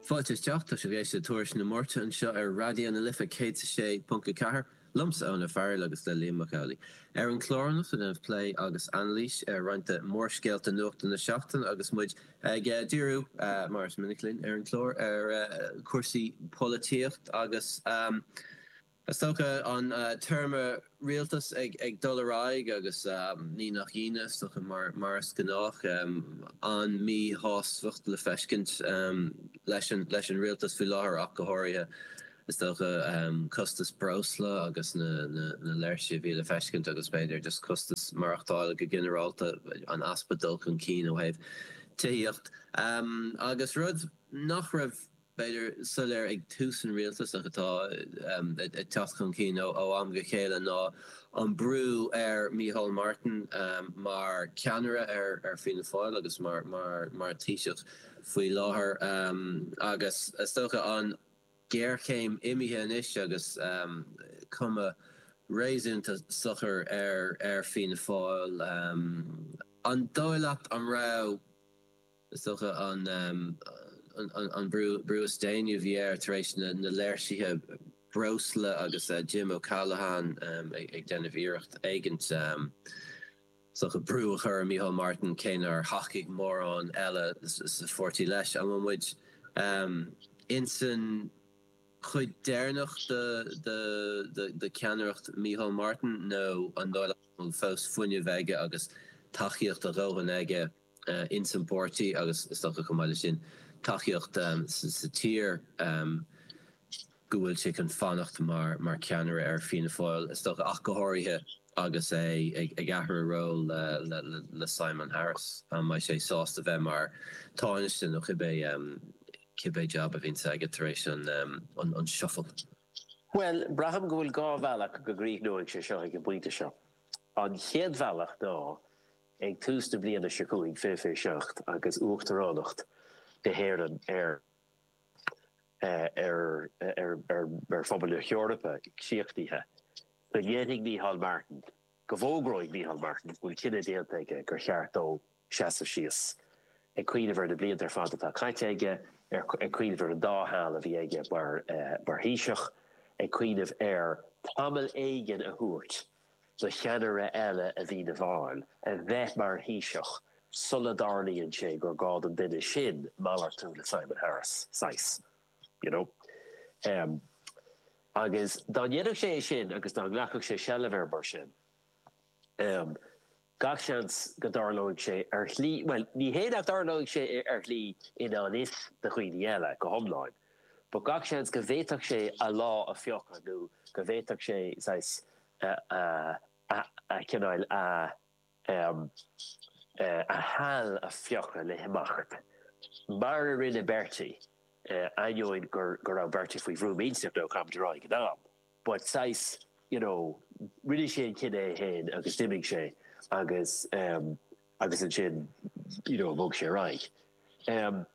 Fáilte isteach, tá sibh ag éisteacht le Tuairisc na Máirte anseo ar Raidió na Life 106.4, liomsa Eoin Ó Fearghaíl agus le Liam Mac Amhlaigh. Ar an chlár anocht ag déanamh plé agus anailís ar roinnt de mhórscéalta nuachta na seachtaine agus muid ag díriú, mar is minic linn ar an chlár, ar chúrsaí polaitíocht agus. Is dócha an téarma 'rialtas ag dul ar aghaidh' agus ní nach ionadh, is dócha, mar is gnách, an-míshástacht le feiscint leis an rialtas faoi láthair ach go háirithe. Is dócha costas breosla agus na léirsithe a bhí le feiscint agus b'fhéidir just costas maireachtála go ginearálta, an easpa dul chun cinn ó thaobh tithíocht agus rud nach raibh b'fhéidir, soiléir ag tús an rialtais ach atá ag teacht chun cinn ó am go chéile ná an brú ar Micheál Martin mar cheannaire ar Fianna Fáil agus mar Thaoiseach faoi láthair agus is dócha an géarchéim imithe anois agus cuma réasúnta socair ar Fianna Fáil. An dóigh leat, an raibh. Is dócha an brú is déanaí a bhí air tar éis na léirsithe breosla agus Jim O'Callaghan ag déanamh iarracht éigint is dócha brú a chur ar Micheál Martin, cé nár thacaigh mórán eile sa pháirtí leis. An bhfuil muid insan chuid deireanach de cheannaireacht Micheál Martin nó an bhfuil fós fuinneamh aige agus tacaíocht a dhóthain aige? ins an bpáirtí agus is dócha chomh maith le sin tacaíocht sa tír go bhfuil sé chun fanacht mar ceannaire ar Fianna Fáil is dócha ach go háirithe agus é ag athrú ról le Simon Harris. An mbeidh sé sásta bheith mar Tánaiste nó cibé jab a bhíonn aige tar éis an shuffle? Bhuel, braithim go bhfuil dhá bhealach go gcríochnóidh sé seo ag an bpointe seo. An chéad bhealach ná Ag tús na bliana seo chugainn fiche fiche seacht agus uachtaránacht na hÉireann ar Phobal na hEorpa críochnaithe. Go ndéanfaidh Micheál Martin, go bhfógróidh Micheál Martin go bhfuil cinneadh déanta aige gur cheart dó seasamh síos. Ag cuimhneamh ar na blianta ar fad atá caite aige, ag cuimhneamh ar an dá sheal a bhí aige mar Thaoiseach, ag cuimhneamh ar tamall éigin a thabhairt. do cheannaire eile ar Fianna Fáil a bheith mar Thaoiseach sula dtarlaíonn sé gur gá don duine sin malartú le Simon Harris, saghas, you know. Agus dá ndéanfadh sé é sin agus dá nglacfadh sé seilbh air mar sin, Gach seans go dtarlóidh sé ar shlí, bhuel, ní hé nach dtarlóidh sé ar shlí i ngan fhios do dhaoine eile go hiomlán, but gach seans go bhféadfadh sé a lá a phiocadh nó go bhféadfadh sé saghas a chinneadh a a sheal a phiocadh le himeacht, mar a rinne Bertie, ainneoin go raibh Bertie faoi bhrú millteach caithfimid a rá ag an am. but saghas you know rinne sé an cinneadh é féin agus d'imigh sé agus em agus ansin you know bhog sé ar aghaidh. Em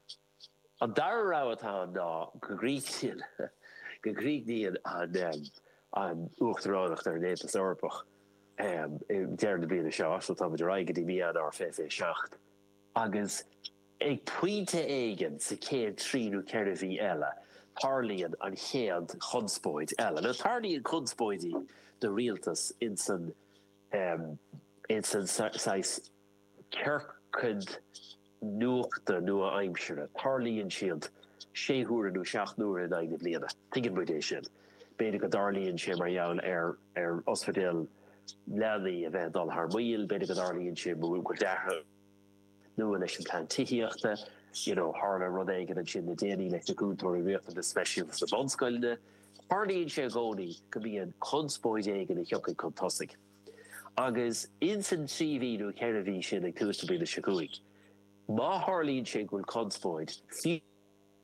an dara rogha atá ann ná go go go gcríochnaíonn an em an uachtaránacht ar an Aontas Eorpach em ag deireadh na bliana seo so tá muid ar aghaidh go dtí mí Eanáir fiche fiche seacht. Agus ag pointe éigin sa chéad trí nó ceithre mhí eile, tarlaíonn an chéad chonspóid eile. Nó tarlaíonn conspóidí do rialtas insan saghas ciorcad nuachta nua-aimseartha, tarlaíonn siad sé huaire nó seacht n-uaire in aghaidh na bliana. Tuigeann muid é sin. B'fhéidir go dtarlaíonn sé mar gheall ar ospidéal leanaí a bheith ag dul thar maoil, b'fhéidir go dtarlaíonn sé mar gheall ar cúlú de shaghas nua leis an plean tithíochta, you know tharla rud éigin ansin le déanaí leis na cúntóirí riachtanas speisialta sna bunscoileanna. Tarlaíonn sé i gcónaí go mbíonn conspóid éigin a thiocfaidh chun tosaigh. Agus ins an trí mhí nó cheithre mhí sin ag tús na bliana seo chugainn, má tharlaíonn sé go bhfuil conspóid, fiú,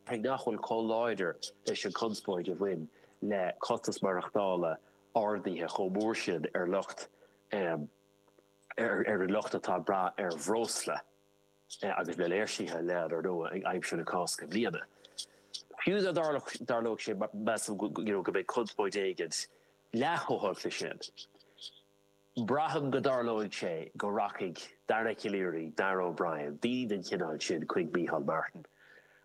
Cé nach bhfuil chomh láidir leis an chonspóid a bhain le costas maireachtála ardaithe chomh mór sin ar lucht ar an lucht atá ag brath ar bhreosla agus le léirsithe le anuas ag aimsir na Cásca i mbliana. Fiú dá dtarlódh sé measaim go you know go mbeidh conspóid éigin leath chomh holc leis sin. Braithim go dtarlóidh sé go rachaidh Dara Calleary, Darragh O'Brien, daoine den chineál sin chuig Micheál Martin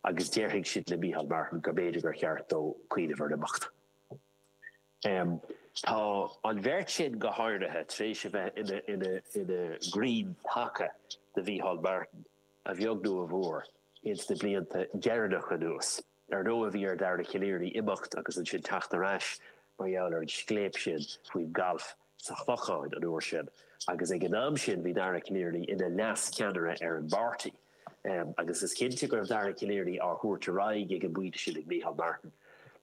agus déarfaidh siad le Micheál Martin go mb'fhéidir gur cheart dó cuimhneamh ar imeacht. Tá an bheirt sin, go háirithe, tar éis a bheith ina gcrainn taca do Mhicheál Martin, a bheag nó a mhór, ins na blianta deireanacha anuas. Dar ndóigh bhí ar Dhara Calleary imeacht agus ansin teacht ar ais mar gheall ar an scléip sin faoin galf sa Chlochán an uair sin agus ag an am sin bhí Dara Calleary ina leas-cheannaire ar an bpáirtí agus is cinnte go raibh Dara Calleary á thabhairt ar aghaidh ag an bpointe sin ag Micheál Martin.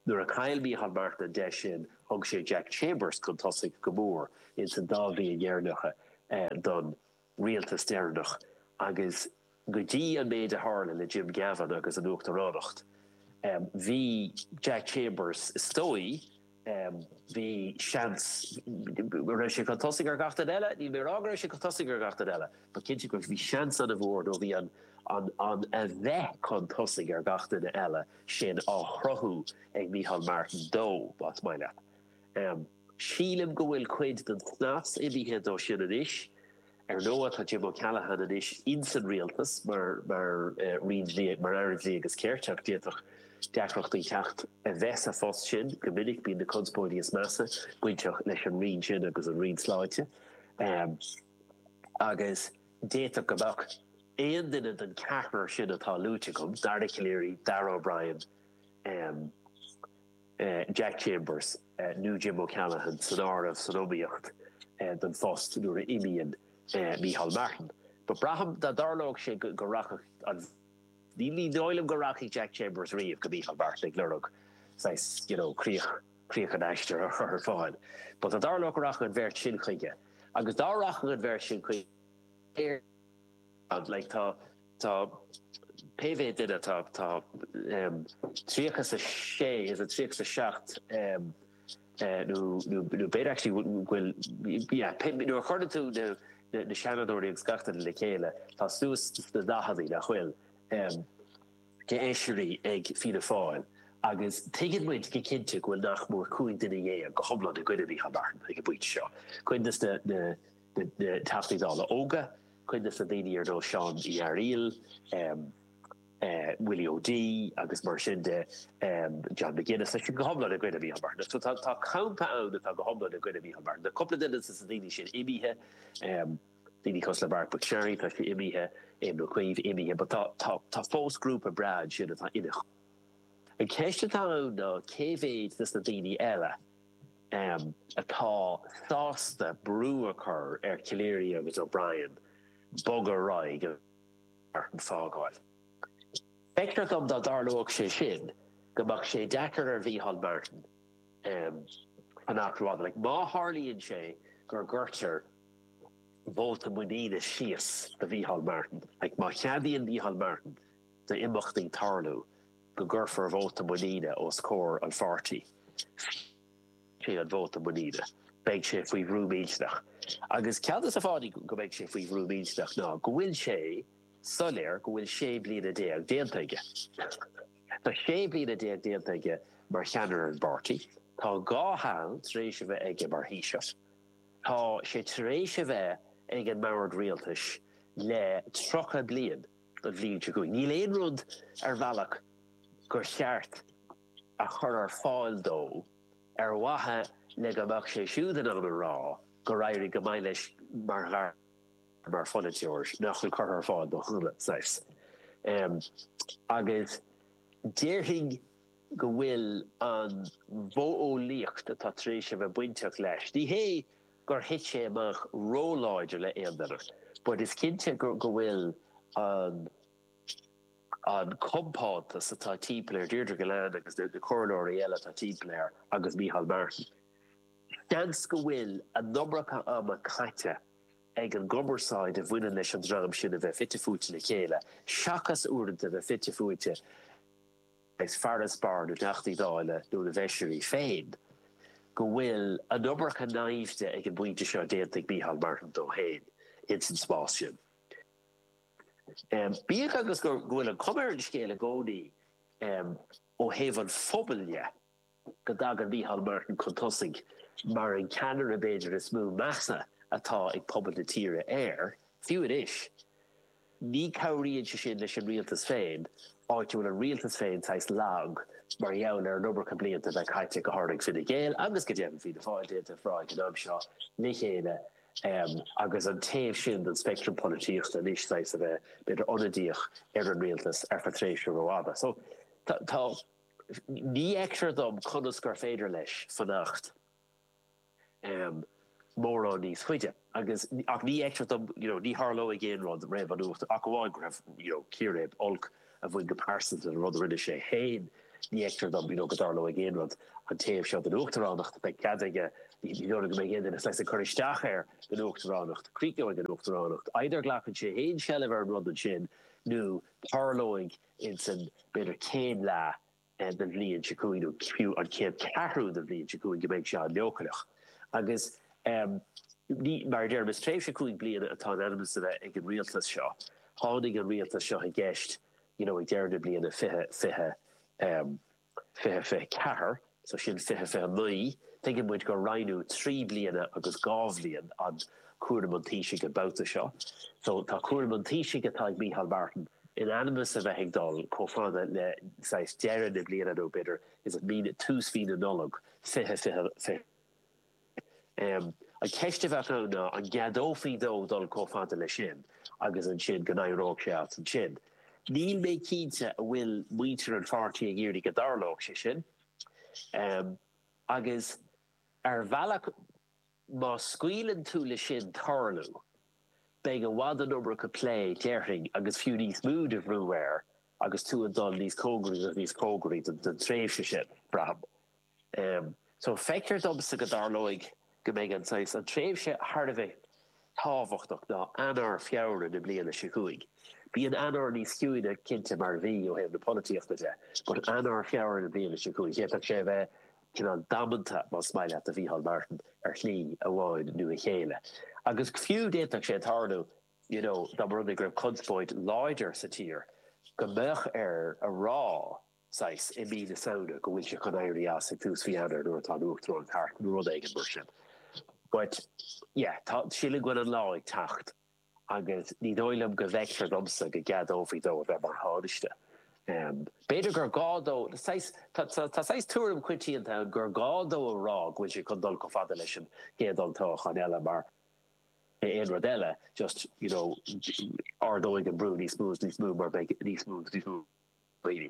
Nuair a chaill Micheál Martin an deis sin thug sé Jack Chambers chun tosaigh go mór ins an dá bhliain dheireanacha don rialtas deireanach agus go dtí an méid a tharla le Jim Gavin agus an uachtaránacht, bhí Jack Chambers, is dóigh, bhí seans go raibh sé chun tosaigh ar gach duine eile. Níl mé ag rá go raibh sé chun tosaigh ar gach duine eile. But cinnte go bhí seans ana-mhór nó bhí an an a bheith chun tosaigh ar gach duine eile sin á chruthú ag Micheál Martin dó, más maith leat. Sílim go bhfuil cuid den snas imithe de sin anois. Ar ndóigh, tá Jim O'Callaghan anois ins an rialtas mar Aire Dlí agus Cirt ach d'fhéadfadh deacrachtaí teacht as a bheith sa phost sin go minic bíonn na conspóidí is measa bainteach leis an roinn sin agus an roinn sláinte agus d'fhéadfadh go mbeadh aon duine den cheathrar sin atá luaite agam, Dara Calleary, Darragh O'Brien, Jack Chambers nó Jim O'Callaghan san áireamh san iomaíocht don phost nuair a imíonn Micheál Martin. But braithim dá dtarlódh sé go rachadh an Ní dóigh liom go rachaidh Jack Chambers riamh go Micheál Martin ag lorg saghas, you know, críoch, críoch an aistir a chur ar fáil. But dá dtarlódh go rachadh an bheirt sin chuige agus dá rachadh an bheirt sin chuige, Tá pé mhéad duine, tá tríocha 's a sé is a tríocha 's a seacht nó b'fhéidir actually go bhfuil yeah pé nuair a chuireann tú na Seanadóirí agus gach duine le chéile tá suas sna daicheadaí nach bhfuil d'fheisirí ag Fianna Fáil agus tuigeann muid go cinnte go bhfuil nach mór cúig dhuine dhéag go hiomlán i gcoinne Micheál Martin ag an bpointe seo. Cuid de na na Teachtaí Dála óga, cuid de na daoine ar nós Seán Ó Fearghaíl, Willie O'Dea agus mar sin de, John McGuinness, tá siad go hiomlán i gcoinne Micheál Martin. So tá, tá campa ann atá go hiomlán i gcoinne Micheál Martin. Tá cúpla duine de na daoine sin imithe, daoine cosúil le Marc MacSharry, tá sé imithe, Éamon Ó Cuív imithe, but tá, tá, tá fós grúpa breá ansin atá ina. An cheist atá ann ná cé mhéid de na daoine eile, atá sásta brú a chur ar Calleary agus O'Brien bogadh ar aghaidh go Martin fágáil. Feictear dom dá dtarlódh sé sin go mbeadh sé deacair ar Mhicheál Martin fanacht. Like má tharlaíonn sé gur gcuirtear vóta muiníne síos do Mhicheál Martin, like má cheadaíonn Micheál Martin d'imeachtaí tarlú. go gcuirfear vóta muiníne os comhair an pháirtí. Fiú sa vóta muiníne, beidh sé faoi bhrú millteanach. Agus ceann de na fáthanna go mbeidh sé faoi bhrú millteanach ná go bhfuil sé soiléir go bhfuil sé bliana déag déanta aige. Tá sé bliana déag déanta aige mar cheannaire an pháirtí. Tá dhá sheal tar éis a bheith aige mar Thaoiseach. Tá sé tar éis a bheith ag an mbord rialtais le tríocha bliain. an bhliain seo chugainn. Níl aon rud ar bhealach gur cheart a chur ar fáil dó ar mhaithe le go mbeadh sé siúd in ann a rá gur éirigh go maith leis mar mar pholaiteoir nach bhfuil curtha ar fáil dó cheana saghas. Agus déarfainn go bhfuil an mhodheolaíocht atá tar éis a bheith bainteach leis, ní hé, gur thit sé amach ró-láidir le aon duine but is cinnte go bhfuil an an compántas atá timpeall air, Deirdre Gillane agus na comhairleoirí eile atá timpeall air agus Micheál Martin, seans go bhfuil an iomarca ama caite ag an gcumarsáid a bhaineann leis an dream sin a bheith fite fuaite le chéile seachas uaireanta a bheith fite fuaite As farasbarr na dTeachtaí Dála nó na bhFeisirí féin go bhfuil an iomarca naimhde ag an bpointe seo déanta ag Micheál Martin dó féin ins an spás sin. Bíodh agus go bhfuil an chuma ar an scéal i gcónaí ó thaobh an phobail dhe, go dtagann Micheál Martin chun tosaigh mar an ceannaire b'fhéidir is mó measa atá ag pobal na tíre air, fiú anois. Ní cabhraíonn sé sin leis an rialtas féin, áit a bhfuil an rialtas féin saghas lag mar gheall ar an iomarca blianta a bheith caite, go háirithe ag Fine Gael agus go deimhin Fianna Fáil, den dara huair an t-am seo le chéile agus an taobh sin den speictream polaitíochta anois saghas a bheith b'fhéidir ionadaíoch ar an rialtas ar feadh tréimhse rófhada. So tá. Ní fheictear dom conas gur féidir leis fanacht mórán níos faide agus, ach ní fheictear dom, you know, ní tharlóidh aon rud roimh an Uacht ach amháin go raibh, you know, círéib olc a bhain go pearsanta le rud a rinne sé féin. Ní fheictear dom, you know, go dtarlóidh aon rud an taobh seo den Uachtaránacht. Beidh cead aige, ní dóigh liom go mbeidh aon duine saghas ag cur isteach air don Uachtaránacht. Críochnóidh an Uachtaránacht. Either glacann sé féin seilbh ar an rud ansin nó tarlóidh. insan b'fhéidir chéad leath den bhliain seo chugainn nó fiú an chéad cheathrú den bhliain seo chugainn go mbeidh sé an-leochaileach agus ní, mar a deirim, is tréimhse cúig bliana atá in ainm is a bheith ag an rialtas seo. Tháinig an rialtas seo i gceist you know ag deireadh na bliana fiche, fiche. 2024, so sin 2029, tuigeann muid go roinnfí trí bliana agus dhá bhliain an cúram an Taoisigh an babhta seo so tá cúram an Taoisigh atá ag Micheál Martin in ainm is a bheith ag dul chomh fada le saghas deireadh na bliana nó b'fhéidir is it mí, tús mhí na Nollag 2026. An cheist a bheadh ann ná an gceadófaí dó dul chomh fada leis sin agus ansin go n-éireodh sé as ansin. Níl mé cinnte a bhfuil muintir an pháirtí ag iarraidh go dtarlódh sé sin. Agus ar bhealach má scaoileann tú le sin tarlú beidh i bhfad an iomarca plé déarfainn agus fiú níos mó de bhrú air agus tú ag dul níos cóngaraí agus níos cóngaraí don tréimhse sin, braithim. So, feictear domsa go dtarlóidh go mbeidh an saghas, an tréimhse thar a bheith tábhachtach ná Eanáir, Feabhra na bliana seo chugainn. Bíonn Eanáir níos ciúine cinnte mar mhí ó thaobh na polaitíochta de, but Eanáir, Feabhra na bliana seo chugainn, d'fhéadfadh sé a bheith cineál damanta, más maith leat, do Mhícheál Martin ar shlí amháin nó eile. Agus fiú d'fhéadfadh sé tarlú, you know, dá mba rud é go raibh conspóid láidir sa tír, go mbeadh air a rá, saghas, i mí na Samhna, go bhfuil sé chun éirí as ag tús mhí Eanáir nuair atá an uachtaránacht thart nó rud éigin mar sin. But, yeah, tá, sílim go bhfuil an lá ag teacht agus ní dóigh liom go bhfeictear domsa go gceadófaí dó a bheith mar Thánaiste. B'fhéidir gur gá dó, saghas, tá, tá saghas tuairim choitianta ann gur gá dó a rá go bhfuil sé chun dul chomh fada leis an gcéad olltoghachán eile mar aon rud eile, just, you know, ardóidh an brú níos mó is níos mó mar beidh níos mó agus níos mó. Daoine.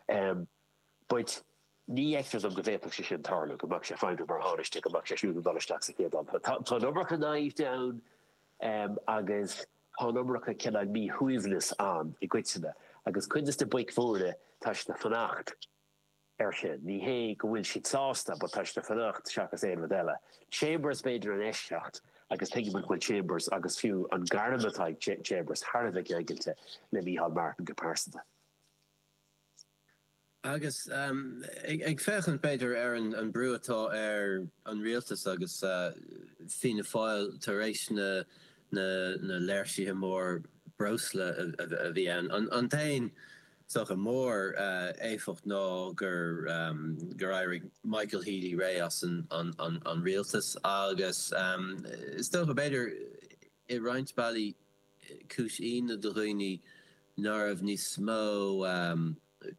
Em. baint. Ní fheictear dom go bhféadfadh sé sin tarlú, go mbeadh sé ag feidhmiú mar Thánaiste, go mbeadh sé siúd ag dul isteach sa chéad toghchán eile. Tá an iomarca naimhde ann em agus tá an iomarca cineál míshuaimhneas ann i gcoitinne agus cuid de na boic mhóra tá siad ag fanacht air sin. Ní hé go bhfuil siad sásta, but tá siad ag fanacht seachas aon rud eile. Chambers b'fhéidir an eisceacht agus tuigim go bhfuil Chambers agus fiú an gairm atá ag Chambers thar a bheith ceangailte le Micheál Martin go pearsanta. Agus ag féachaint b'fhéidir ar an brú atá ar an rialtas agus Fianna Fáil tar éis na léirsithe móra breosla a bhí ann, an dtéann Is dócha, mór-éifeacht ná gur éirigh Michael Healy-Rae as an rialtas agus is dócha, b'fhéidir, i roinnt bealaí cúis ionadh do dhaoine ná raibh níos mó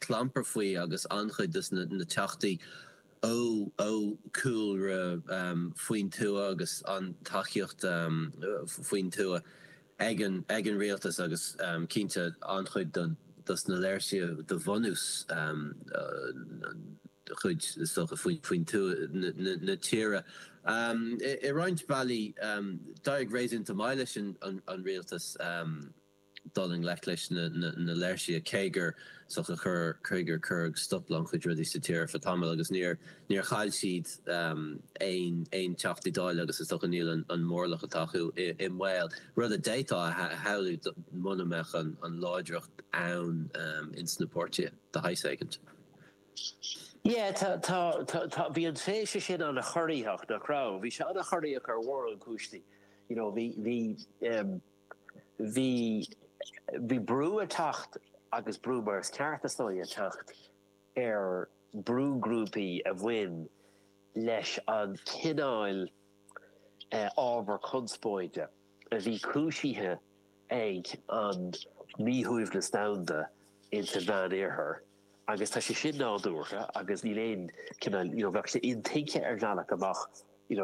clampair faoi agus an-chuid dos na teachtaí ó cúlra faoin tuath agus an tacaíocht faoin tuath. ag an ag an rialtas agus cinnte an-chuid do dos na léirsithe do bhunús, cuid is dócha faoin faoin tuath na na tíre. I roinnt bealaí d'éirigh réasúnta maith leis an an rialtas dul i ngleic leis na na na léirsithe cé gur socha chur cé gur cuireadh stop le an-chuid rudaí sa tír ar feadh tamall agus níor Níor chaill siad aon Teachtaí Dála agus is dócha níl an móramh atá acu i mbaol, rud a d'fhéadfá a shamhlú muna mbeadh an láithreacht ann ins na páirtithe de shaghas éigint. Yeah, tá, tá, tá, tá, bhí an tréimhse sin ana chorraitheach, nach raibh? Bhí sé ana chorraitheach ar mhórán cúinsí. You know, bhí, bhí, bhí, bhí brú ag teacht agus brú mar is ceart is dóigh ag teacht. ar brúghrúpaí a bhain leis an cineál ábhar conspóide a bhí cúisithe ag an míshuaimhneas domhanda in sa Mheánoirthear agus tá sé sin nádúrtha agus níl aon cineál, you know, bheadh sé intuigthe ar bhealach go mbeadh,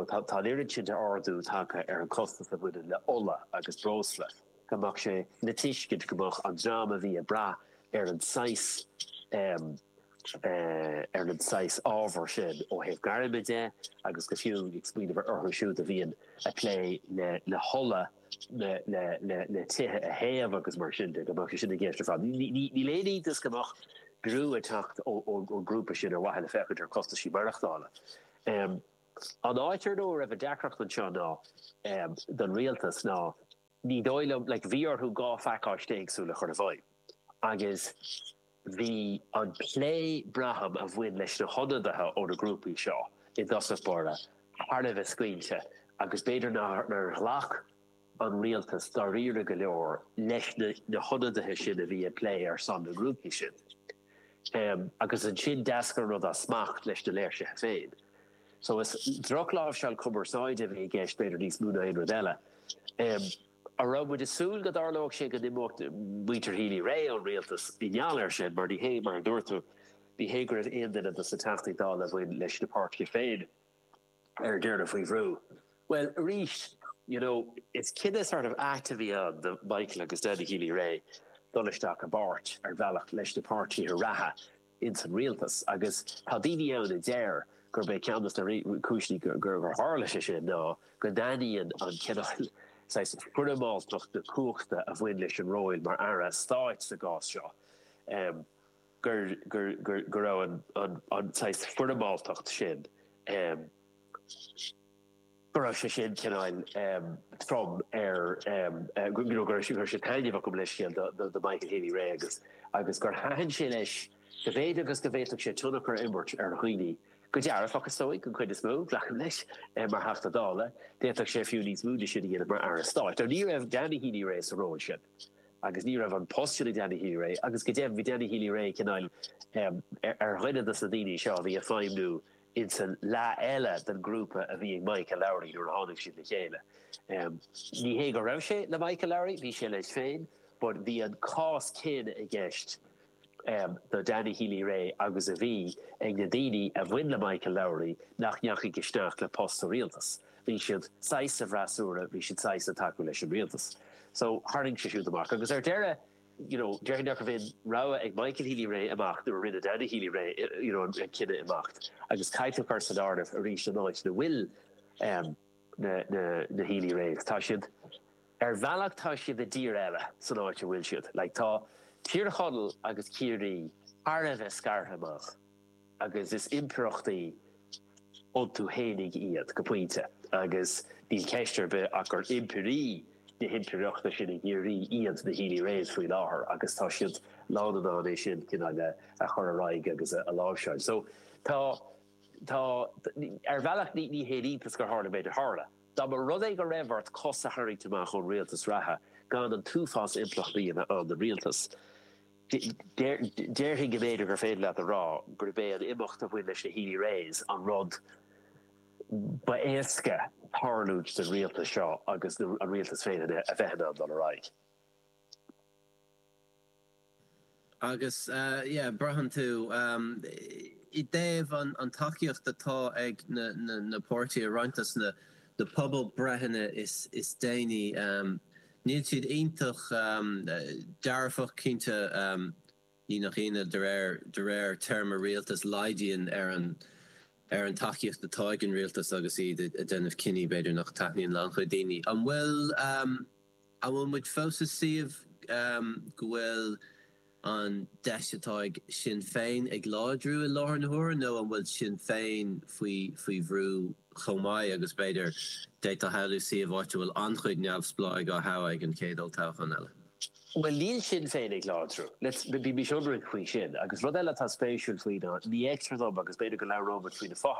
tá an oiread sin d'ardú tagtha ar an costas a bhaineann le ola agus breosla. go mbeadh sé le tuiscint go mbeadh an dream a bhí ag brath ar an saghas ar an saghas ábhair sin ó thaobh gairme de agus go fiú ag smaoineamh ar orthu siúd a bhíonn ag plé le le hola le le le le tithe a théamh agus mar sin de go mbeadh sé sin i gceist ar fad ní ní ní haon iontas go mbeadh brú ag teacht ó ó ó grúpaí sin ar mhaithe le féachaint ar costaisí maireachtála um an áit ar ndóigh a raibh an deacracht anseo ná um don rialtas ná ní dóigh liom, like bhí orthu dhá phacáiste éagsúla a chur i bhfeidhm agus bhí an plé, braithim, a bhain leis na hionadaithe ó na grúpaí seo i dtosach báire thar a bheith scaoilte agus b'fhéidir nár ghlac an rialtas dáiríre go leor leis na hionadaithe sin a bhí ag plé ar son na ngrúpaí sin agus ansin d'éalaigh an rud as smacht leis na léirsithe féin. So is drochláimhseáil cumarsáide a bhí i gceist, b'fhéidir níos mó ná aon rud eile. An raibh muid ag súil go dtarlódh sé go n-imeodh muintir Healy-Rae ón rialtas i ngeall air sin? Mar ní hé, mar a dúirt tú, ní hé go raibh aon duine dos na Teachtaí Dála a bhain leis na páirtithe féin ar deireadh faoi bhrú. Bhuel, arís, you know, is cinneadh sort of ait a bhí ann do Michael agus Danny Healy-Rae dul isteach i bpáirt, ar bhealach, leis na páirtithe reatha. ins an rialtas agus tá daoine ann a deir gurb é ceann dos na cúiseanna gur tharla sé sin ná go dtaitníonn an cineál saghas foirmeáltacht na cumhachta a bhain leis an ról mar Aire Stáit sa gcás seo go raibh an saghas foirmeáltacht sin go raibh sé sin cineál trom ar, you know, go raibh sé, go raibh sé taitneamhach gabh mo leithscéal do, do Michael Healy-Rae agus, agus gur thaitin sé leis, go bhféadfadh agus go bhféadfadh sé tionchar a imirt ar dhaoine, go dearfach is dóigh, an chuid is mó, glacaim leis, mar Theachta Dála, d'fhéadfadh sé fiú níos mó de sin a dhéanamh mar Aire Stáit. Now ní raibh Danny Healy-Rae sa ról sin agus ní raibh an post sin ag Danny Healy-Rae agus go deimhin bhí Danny Healy-Rae cineál ar dhuine dos na daoine seo a bhí ag feidhmniú ins an leath eile den grúpa a bhí ag Michael Lowry nuair a tháinig siad le chéile. Ní hé go raibh sé le Michael Lowry, bhí sé leis féin but bhí an cás céanna i gceist do Danny Healy-Rae agus a bhí ag na daoine a bhain le Michael Lowry nach ndeachaigh isteach le post sa rialtas. Bhí siad saghas sa bhfreasúra, bhí siad saghas ag tacú leis an rialtas. So tharraing sé siúd amach agus ar deireadh, you know déarfainn nach raibh aon rogha ag Michael Healy-Rae ach imeacht nuair a rinne Danny Healy-Rae you know an cinneadh imeacht agus caithfidh tú cur san áireamh arís an áit ina bhfuil em na na na Healy-Raes tá siad ar bhealach tá siad i dtír eile san áit a bhfuil siad like tá Tír Chonaill agus Ciarraí thar a bheith scartha amach. agus is impireachtaí iontu fhéinig iad, go pointe, agus níl ceist ar bith ach gur impirí na himpireachta sin i gCiarraí iad na Healy-Raes faoi láthair agus tá siad lán in ann é sin cineál a chur ar aghaidh agus a láimhseáil. So, tá, tá, ar bhealach ní, ní haon iontas gur tharla an méid a tharla. Dá mba rud é go raibh ort cos a tharraingt amach ón rialtas reatha gan an t-uafás impleachtaí a bheith ann don rialtas, Déarfainn go mb'fhéidir gur féidir leat a rá gurb é an imeacht a bhain leis na Healy-Raes an rud ba éasca tarlúint don rialtas seo agus an rialtas féin a bheith in ann dul ar aghaidh. Agus yeah braitheann tú i dtaobh an tacaíocht atá ag na páirtithe roinnt de na pobalbhreitheanna is déanaí. Níl siad iontach dearfach, cinnte. Ní nach ionadh, de réir de réir téarma rialtais, laghdaíonn ar an ar an tacaíocht atá ag an rialtas agus iad ag déanamh cinní, b'fhéidir, nach dtaitníonn le an-chuid daoine. An bhfuil an bhfuil muid fós i suíomh go bhfuil. an deis atá ag Sinn Féin ag láidriú i láthair na huaire nó an bhfuil Sinn Féin faoi faoi bhrú chomh maith agus b'fhéidir, d'fhéadfá a shamhlú, suíomh áit a bhfuil an-chuid neamhspleáigh á dtoghadh ag an chéad olltoghchán eile? Bhuel níl Sinn Féin ag láidriú. Bímis ionraic faoi sin. Agus rud eile atá spéisiúil faoi ná, ní fheictear dom, agus b'fhéidir go labhróimid faoi na fo-thoghcháin,